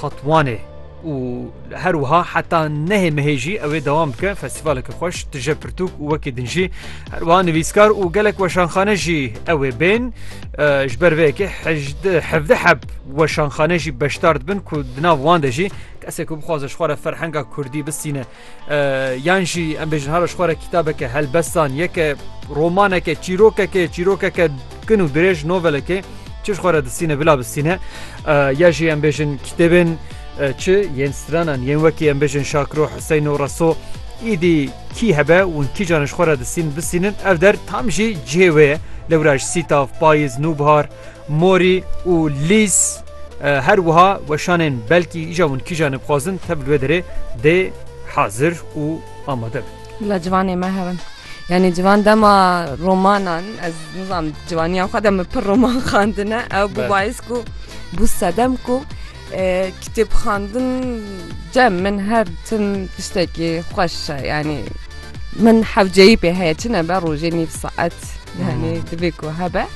Tatwanê û her wiha heta nehê mehê jî ew ê dewam bike festîvaleke xweş, tije pirtûk û wekî din jî her wiha nivîskar û gelek weşanxane jî ew ê bên. Ji ber vê yekê hejdeh hevdeh heb weşanxane jî beşdar dibin ku di nav wan de jî kesê ku bixwaze ji xwe re ferhenga kurdî bistîne Yan jî em bêjin hara ji xwe re kîtabeke helbestan yeke romaneke çîrokeke çîrokeke kin û dirêj novelekê çi ji xwe re distîne bila bistîne ya jî em bêjin kitêbên çi yên stranan yên wekî em bêjin şakro Hüseyin û Reso îdî kî hebe û kîjan ji xwe re distîn bistînin ev der tam jî cihê wê ye lewra ji sîtav payiz nûbihar Mori û Lîz her wiha weşanên belkî îja hûn kîjan e bixwazin tev li wê derê dê hazir û amade bin. Bila ciwanê me hebin. Yani ciwan dema romanan ez nizam ciwaniya xwe de min pir roman xandine ew bû bayis ku bû sedem ku Kitêb xwendin cem min her tim tiştekî xweş e yanî min hewceyî pê heye çi nebe rojê nîv saet yanî divê ku hebe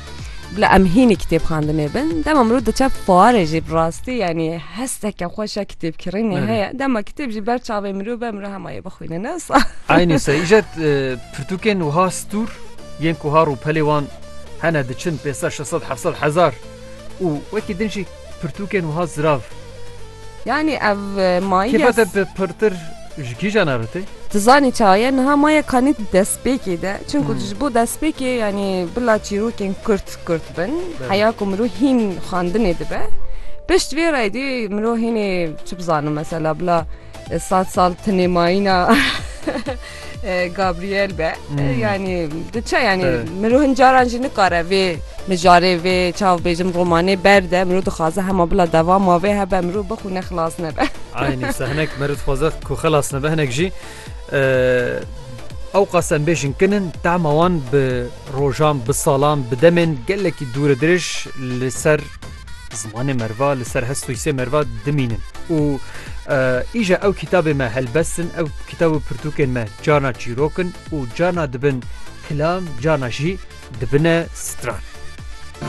bila em hînî kitêb xwendinê bin dema mirov diçe fuarê jî bi rastî yanî hesteke xweş e kitêbkirînê heye dema kitêb jî ber çavê mirov be mirov hema yê bixwîne ne wisa Eynî se îjet pirtûkên wiha stûr yên ku har û pelê wan hene diçin pê ser şeset hefset hezar û wekî din jî Pirtûkên wiha zirav. Yanî ev mayî ya. Kêfa te pirtir ji kîjan re tê? Tu zanî çawa ye? Niha maya kanî di destpêkê de. Çimku tu ji bo destpêkê yanî bila çîrokên kurt kurt bin. Heya ku mirov hîn xwendinê dibe. Pişt vê re êdî mirov hînê çi bizanim mesela bila. Sat sal tinê mayîna Gabriel be hmm. yani diçe yani miro hin caran jî nikare vê mijarê vê çav bêjim romanê berde miro dixwaze hema bila devama vê hebe miro bixûne xilas nebe Aynî se hinek miro dixwaze ku xilas nebe hinek jî ew qasen bêjin kinin tema wan bi rojan bi salan bi demên gelekî dûre dirêj li ser Zimanê merva li ser hest û hîsê merva dimînin û îja ew kitabê me helbestin ew kitab û pirtûkên me carna çîrok in û carna dibin kilam carna jî dibine stran.